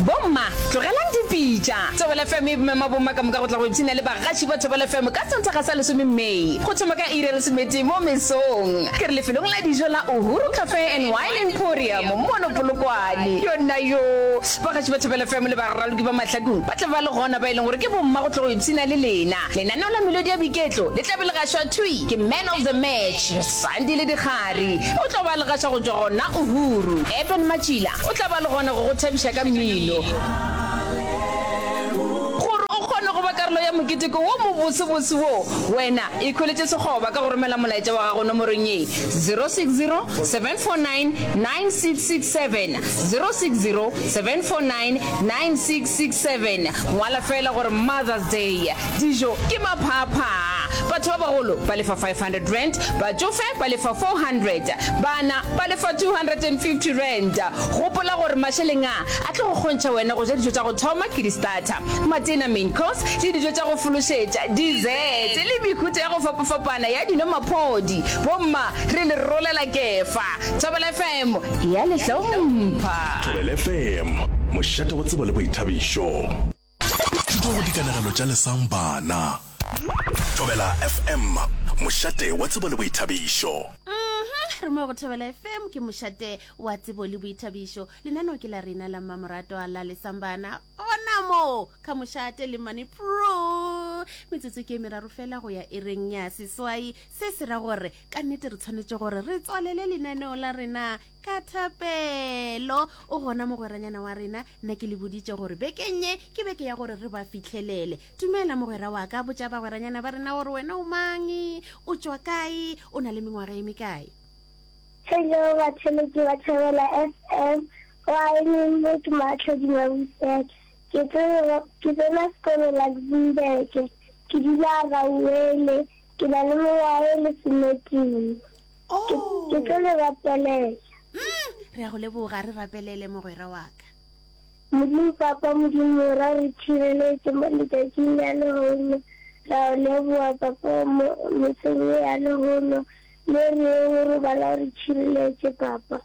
Bomma, tlogelang dipitša. Thobela FM e mema bomma ka moka go tla go ipshina le bagaši ba Thobela FM ka Sontaga sa lesome May, go thoma ka iri ya lesometee mo mesong. Ke re lefelong la dijo la Uhuru Cafe and Wine Emporium mono Polokwane. Yona yoo, bagaši ba Thobela FM le baraloki ba mahlakong ba tla ba le gona, ba e leng gore ke bomma go tla go ipshina le lena. Lenaneo la melodi ya boiketlo le tla be le gašwa thwi ke Man of the Match. Sandi le Dikgari o tlo ba le gaša go tšwa gona Uhuru. Eben Matšila o tla ba le gona go go thabiša ka mmino. Gore o kgone go ba karolo ya moketeko wo mobosebose wo, wena ikhweletše sekgoba ka go romela molaetša wa gago nomorong ye, 0607499667, 0607499667. Ngwala feela gore Mother's Day. Dijo ke maphaaphaa. Batho ba bagolo ba lefa R500, batšofe ba lefa R400, bana ba lefa R250. Gopola gore mašeleng a a tlo go kgontšha wena go ja dijo tša go thoma ke di-starter, matena, main course, le dijo tša go fološetša, dessert, le mehuta ya go fapafapana ya dino, maphodi. Bomma re le rolela kefa. Thobela FM e a le hlompha. Thobela FM, mošate wa tsebo le boithabišo. Thuto go dikanegelo tša lesang bana. Thobela FM, mošate wa tsebo le boithabišo. Uhmm re mo go Thobela FM ke mošate wa tsebo le boithabišo. Lenaneo ke la rena la mmamoratwa la lesang bana gona mo ka mošate le mane pro metsotso ke meraro fela go ya ereng ya seswai se se ra gore ka nnete re tshwanetse gore re tswalele lenaneo la rena Ka thapelo, o gona mogweranyana wa rena, nna ke le boditše gore bekeng ye ke beke ya gore re ba fihlelele. Dumela, mogwera wa ka, botša bagweranyana ba rena gore wena o mang, o tšwa kae, o na le mengwaga e mekae. Hello batholo ke ba thabela FM wa Engelbert Matlho Dimabusek ke tsena ke tsena sekolo Luxembourg ke dula Rauwele ke na le mengwaga e lesometee. ke tlo le rapelela mm, re a go leboga re rapelele mogwera wa ka modimo papa modimo ra re tšhireletse mo letšatšing la lehono ra o leboga papa mo meseng ye ya lehono le re o robala o re tšhireletse papa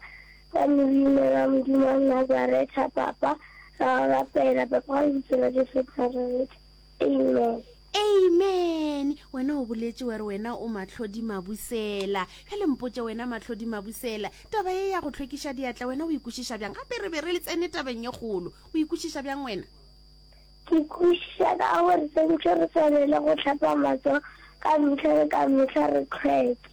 ka leina la modimo wa nazaretha papa ra o rapela papa ka lebitsela jesu nazaretha Amen. Amen. Wena o boletše wa re wena o Mahlodi Mabusela. Bjale mpotše wena Mahlodi Mabusela, taba ye ya go hlwekiša diatla wena o ikwešiša bjang? Gape re be re le tsene tabeng ye kgolo. O ikwešiša bjang wena? Ke ikwešiša ka gore swantšwe re swanele go hlapa matsogo ka mehla le ka mehla re hlweke.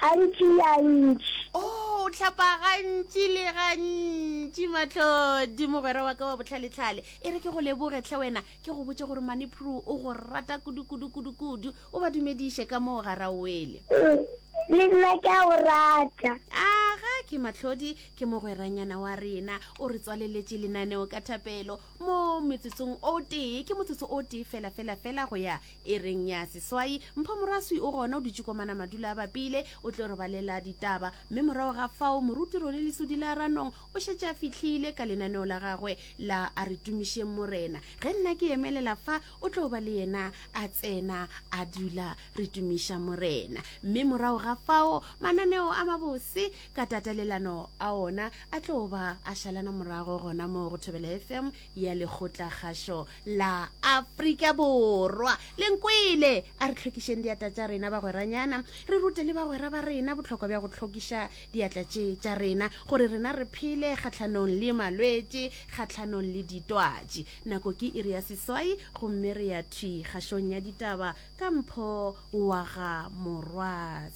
gantši ya ntši. Oh, o hlapa gantši le gantši, Matlodi, mogwera wa ka wa bohlalehlale. E re ke go leboge hle wena, ke go botše gore Mane Prue o go rata kudu-kudu-kudu-kudu. O ba dumediše ka moo ga Rauwele. Ee, le nna ke a o rata. Aga ke Matlodi, ke mogweranyana wa rena. O re tswaleletše lenaneo ka thapelo mo metsotsong o tee, ke motsotso o tee fela-fela-fela go ya E reng ya seswai, Mpho Moraswi o gona o dutše ko Manamadula a bapile, o tlo re balela ditaba. Mme morago ga fao Moruti Role Lesodi la Ranong o šetše a fihlile ka lenaneo la gagwe la A Re Tumišeng Morena. Ge nna ke emelela fa, o tlo ba le yena a tsena a dula re tumiša Morena. Mme morago ga fao mananeo a mabose ka tatelelano a ona a tlo ba a šalana morago gona moo go Thobela FM ya Lekgotlakgašo la afrika borwa le nkwele a re tlhokišeng diatla tša rena bagweranyana re rute le bagwera ba rena botlhokwa bja go tlhokiša diatla tše tša rena gore rena re phele kgatlhanong le malwetše kgatlhanong le ditwatši nako ke iri ya seswai gomme re ya thwi kgašong ya ditaba ka mpho wa ga morwatsi